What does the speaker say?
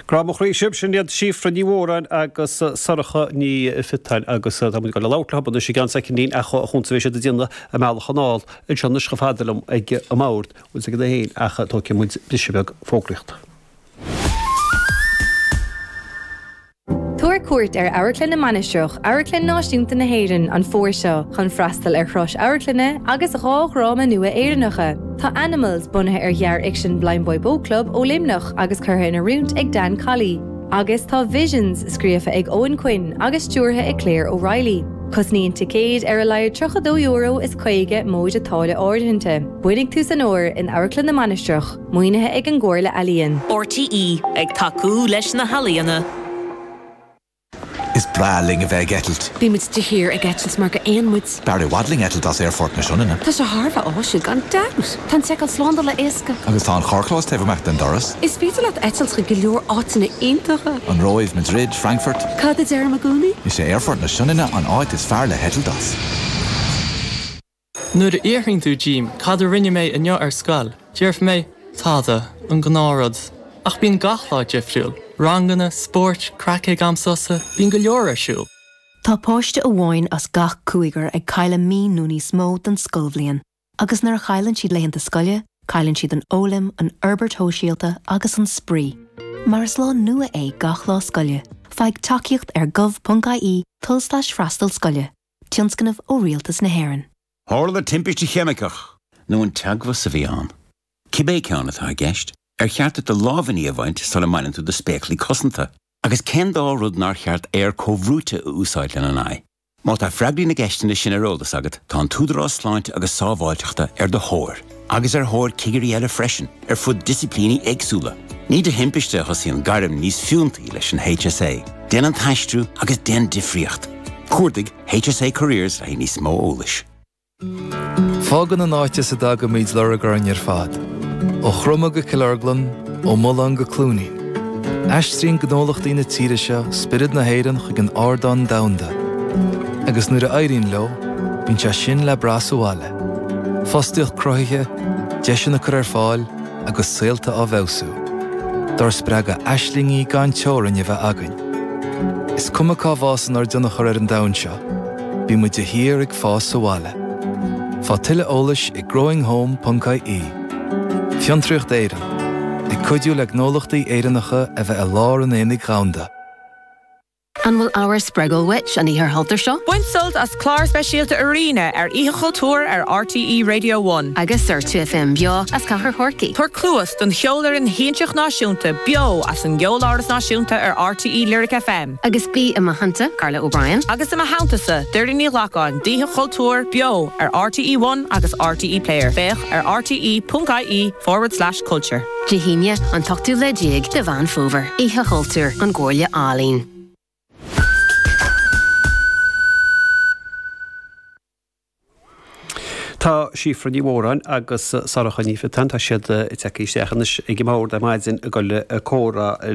Grá mo chroí sibh, sin iad Síofra Ní Mhóráin agus Sorcha Ní Phiotáin agus tá muid ag dul ag labhairt leothub anois i gceann soicind ach chúns a bheidh siad ag déanamh a mbealach anall anseo anois chomh fada liom ag an mbord, bhuel ag an aon ach tógfaidh muid briseadh beag fógraíocht. Tabhair cuairt ar Amharclann na Mainistreach, Amharclann Náisiúnta na hÉireann, an fómhar seo chun freastal ar thogha amharclainne agus dhá dhráma nua Éireannacha. Tá Animals, bunaithe ar ghearrfhicsean Blindboy Boat Club ó Luimneach agus curtha in oiriúint ag Dan Colley, agus tá Visions, scríofa ag Eoin Quinn agus stiúrtha ag Claire O'Reilly. Cosnaíonn ticéid ar a laghad €32 is 50 móide táille áirithinte. Bainfidh tú sult as an uair in Amharclann na Mainistreach. Maoinithe ag an gComhairle Ealaíon. RTÉ ag tacú leis na healaíona. Is breá linn a bheith ag eitilt. Bhí muid de shíor ag eitilt maraon muid. B'fhearr i bhfad linn eitilt as Aerfort na Sionainne. Tá sé thar a bheith áisiúil gan dabht. Tá an tseiceáil slándála éasca. Agus tá an carrchlós taobh amuigh den doras. Is féidir leat eitilt chuig go leor áiteanna iontacha. An Róimh, Madrid, Frankfurt. Cad a deirimid i gcónaí? Is é Aerfort na Sionainne an áit is fearr le heitilt as. Nuair a fhiafraíonn tú díom cad a rinne mé inniu ar scoil, déarfaidh mé, tada, an gnáth rud. Ach bíonn gach lá difriúil, ranganna, spóirt, craic ag am sosa, bíonn go leor ar siúl. Tá páiste amháin as gach cúigear ag cailleadh mí nó níos mó den scoilbhliain agus nuair a chailleann siad laethanta scoile, cailleann siad an fhoghlaim, an fhorbairt shóisialta agus an spraoi. Mar is lá nua é gach lá scoile, faigh tacaíocht ar gov.ie tulslais freastal scoile. Tionscnamh ó Rialtas na hÉireann. Tharla timpiste cheimiceach. nó an teagmhas a bhí ann. Cibé ceann atá i gceist, ar cheart duit do lámhainní a bhaint sula mbaineann tú do spéaclaí cosanta? Agus cén dá rud nár cheart aer comhbhrúite a úsáid lena n-aghaidh? Má tá freagraí na gceisteanna sin ar eolas agat, tá an tÚdarás Sláinte agus Sábháilteachta ar do thóir. agus ar thóir cigirí eile freisin ar fud disciplíní éagsúla. Ní de thimpiste a thosaíonn gairm níos fiúntaí leis an HSA. Déan an t-aistriú agus déan difríocht! Cuardaigh HSA Careers le níos mó eolais. Fágann an áit as a dtagaimid lorg orainn ar fad. Ó Chromadh go Cill Orglan, ó Mulán go Cluainín. Aistríonn gnólachtaí na tíre seo spiorad na hÉireann chuig an ardán domhanda, agus nuair a éiríonn leo, bíonn sé sin le brath sa bhaile. Fostaíocht cruthaithe, deiseanna á gcur ar fáil agus saolta á bhfeabhsú. Dár spreagadh aislingí gan teorainn a bheith againn. Is cuma cá bhfásann ár dtionchar ar an domhan seo, bímid de shíor ag fás sa bhaile. Faigh tuilleadh eolais ag growinghome.ie. Fiontraíocht Éireann, ag cuidiú le gnólachtaí Éireannacha a bheith i lár an aonaigh dhomhanda. An bhfuil ábhar spreagúil uait an Oíche Chultúir seo? Bain sult as clár speisialta Arena ar Oíche Chultúir ar RTÉ Radio One. Agus ar 2FM beo as Cathair Chorcaí. Tabhair cluas don Cheolfhoireann Shiansach Náisiúnta beo as an gCeoláras Náisiúnta ar RTÉ Lyric FM. Agus bí i mo theannta, Carla O'Brien. Agus i mo theanntasa, Doireann Ní Ghlacáin, d'Oíche Chultúir beo ar RTÉ One agus RTÉ Player. Féach ar rte.ie forward slash. Culture. Dé hAoine, an t-ochtú lá déag de Mheán Fómhair, Oíche Chultúir, ón gComhairle Ealaíon. Tá Síofra Ní Mhóráin agus Sorcha Ní Phiotáin, tá siad ag teacht isteach anois ag an mbord ar maidin i gcomhair comhrá